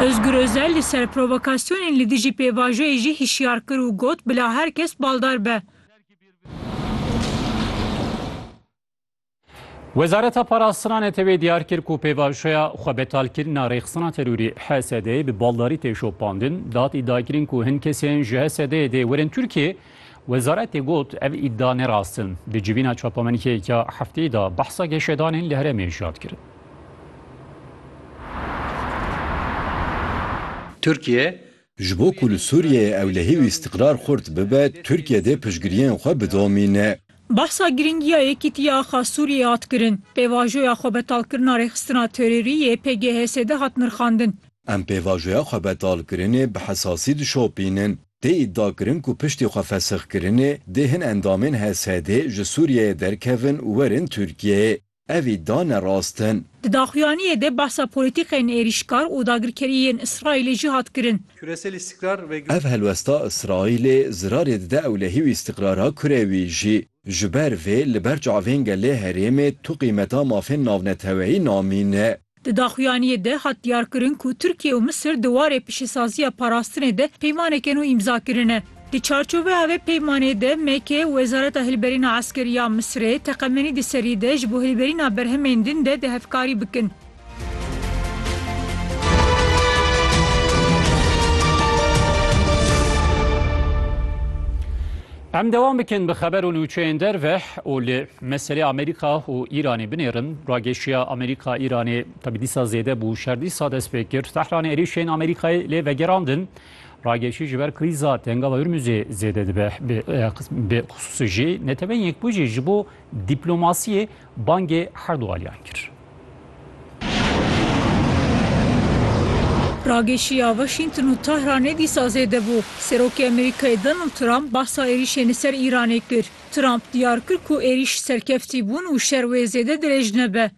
Ozgur Ozel li ser provokasyonên li dijî pêvajoyê jî hişyar kir û got, Bila her kes baldar be. Wezareta Parastina Neteweyê diyar kir ku pêvajoya xwebetalkirina rêxistina terorî HSD'ê bi baldarî tê şopandin. Dad îdiakirin ku hin kesên ji HSD'ê dê werin Tirkiyeyê Wezaretê got, ev îdia ne rast in. Di civîna çapamenikeyek ya hefteyê de behsa geşedanên li herêmê jî hat kirin. Tirkiye, Ji bo ku li Sûriyeyê ewlehî û îstîqrar xurt bibe, Tirkiye dê piştgiriyên xwe bidomîne. Behsa girîngiya yekîtiya axa Sûriyeyê hat kirin. Pêvajoya xwebetalkirina rêxistina terorî yê PGHS'ê de hat nirxandin. Em pêvajoya xwebetalkirinê bi hesasî dişopînin. Tê îdiakirin ku piştî xwe fesixkirinê dê hin endamên HSDê ji Sûriyeyê derkevin û werin Tirkiyeyê. Ev îdia ne rast in. Di daxuyaniyê de behsa polîtîkeyên êrîşkar û dagirkerî yên Îsraîlê jî hat kirin. Ev helwesta Îsraîlê zirarê dide ewlehî û îstîqrara kurê wî jî. Ji ber vê li ber çavên gelê herêmê tu qîmeta mafên navneteweyî namîne. Di daxuyaniyê de hat diyarkirin ku Tirkiye û Misir di warê piştîsaziya parastinê de peymaneke nû îmza kirine. Di çarçoveya vê peymanê de MK Wezareta Hilberîna Eskerî ya Misirê teqemenî di serî de ji bo hilberîna berhemên din de di hevkarî bikin. Em devam bikin bi xeber û nûçeyên derve û li meselê Amerîka û Îranê binêrin. Rageşiya Amerîka Îranê tabi dîsa zêde bû şer dîsa dest pê kir. Tehranê êrîşên Amerîkayê lê vegerandin. Rageşî ji ber krîza tengava Hurmuzê zêde dibe. Bi xusûsî jî neteweyên yekbûjî ji bo dîplomasiyê Bangê her du aliyan kir. Rageşiya Washington û Tehranê dîsa zêde bû. Serokê Amerîkayê Donald Trump behsa êrîşên li ser Îranê kir. Trump diyar kir ku êrîş serkeftî bûn û şer wê zêde dirêj nebe.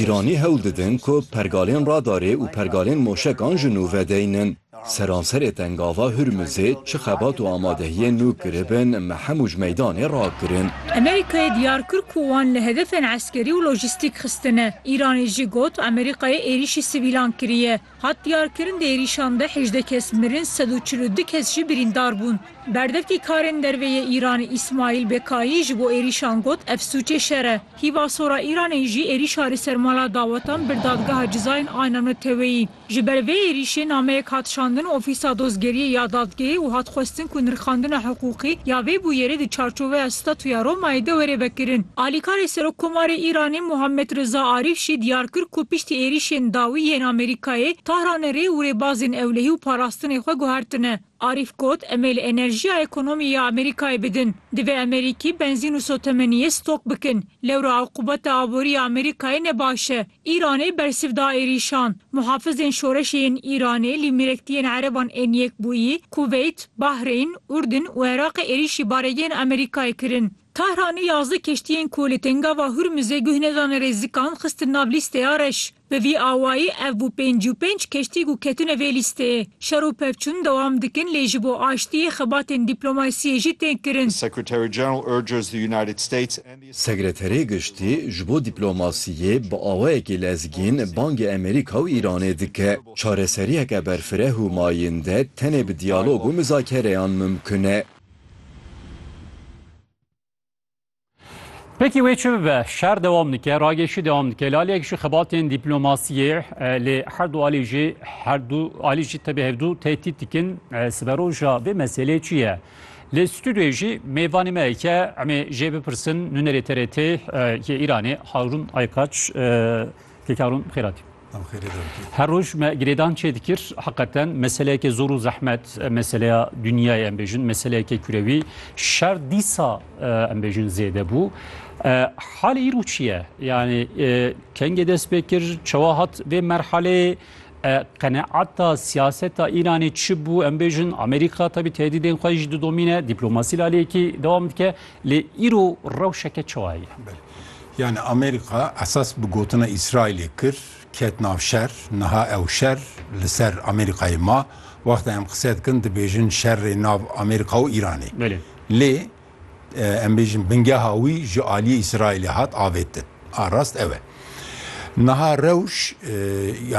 Îranî hewl didin ku pergalên radarê û pergalên moşekan ji nû vedeynin. Seranserê Tengava Hurmizê çi xebat û amadehiyên nû kiribin me hemû ji meydanê rakirin. Amerîkayê diyar kir ku wan li hedefên eskerî û lojîstîk xistine. Îranê jî got Amerîkayê êrîşî sivîlan kiriye. Hat diyarkirin di êrîşan de hejdeh kes mirin sed û çil û du kes jî birîndar bûn. Berdevkî karên derve yê Îranê Îsmaîl Bekayî ji bo êrîşan got ev sûcê şer e. Hîvasora Îranê jî êrîşa li ser mala dawetan bir dadgeha cizayên Ayna Neteweyî. Ji ber vê êrîşê nameyek hat şandin Ofîsa Dozgeriyê ya Dadgehê û hat xwestin ku nirxandina hiqûqî ya vê bûyerê di çarçoveya Statuya Romayê de were vekirin. Alîkarê Serokkomarê Îranê Muhammed Riza Arîf jî diyar kir ku piştî êrîşên dawî yên Amerîkayê, Tahranê rê û rêbazên ewlehî û parastinê xwe guhertine. Arîf got, Em ê li enerjiya ekonomî ya Amerîkayê bidin. Divê Amerîkî benzîn û sotemeniyê stok bikin. Lewra aqûbeta aborî ya Amerîkayê ne baş e. Îranê bersiv da êrîşan. Muhafizên şoreşê yên Îranê lî mêrektiyên ereban ên Yekbûyî, Kuveyt, Bahreyn, Urdin û Iraqê êrîşî baregehên Amerîkayê kirin. Tahranê yazdeh keştiyên ku li Tengava Hurmizê guh nedane rêzikan xistin nav lîsteya reş. Bi vî awayî ev bû pêncî û pênc keştî ku ketine vê lîsteyê. Şer û pevçûn dewam dikin lê ji bo aştiyê xebatên dîplomasiyê jî tên kirin. Sekreterê Giştî ji bo dîplomasiyê bi awayekî lezgîn bangê Amerîka û Îranê dike, Çareseriyeke berfireh û mayînde tenê bi diyalog û mizakereyan mimkun e. Pêkî wê çi bibe, şer dewam dike, ragêşî dewam dike. Li aliyek jî xebatên dîplomasiyê li her du alî jî her du alî jî tevî hevdu tehdît dikin. Siberoja vê meselê çi ye? Li stûdyoyê jî mêvanê me heke em ê jê bipirsin nûnerê TRT yê Îranê Harûn Aykaç Kek Harûn bi xêr hatî. Her roj me girêdan çê dikir heqeten meseleyeke zor û zehmet meseleya dinyayê em bêjin meseleyeke kurewî şer dîsa em bêjin zêde bû. Halê îro çi ye? Yani kengê dest pê kir çewa hat vê merhaleyê Qeneata siyaseta Îranê çi bû? Em bêjin Amerîka tabî tehdîdên xwe jî didomîne, dîplomasî li aliyekî dewam dike. Lê îro rewşeke çawa heye? Yani Amerîka esas bi gotina Îsraîlê kir ket nav şer, niha ew şer li ser Amerîkayê ma. Wexta em qise dikin dibêjin şerê nav Amerîka û Îranê. Lê em bêjin bingeha wî ji aliyê Îsraîlê hat avêtin. A rast ew e. Niha rewş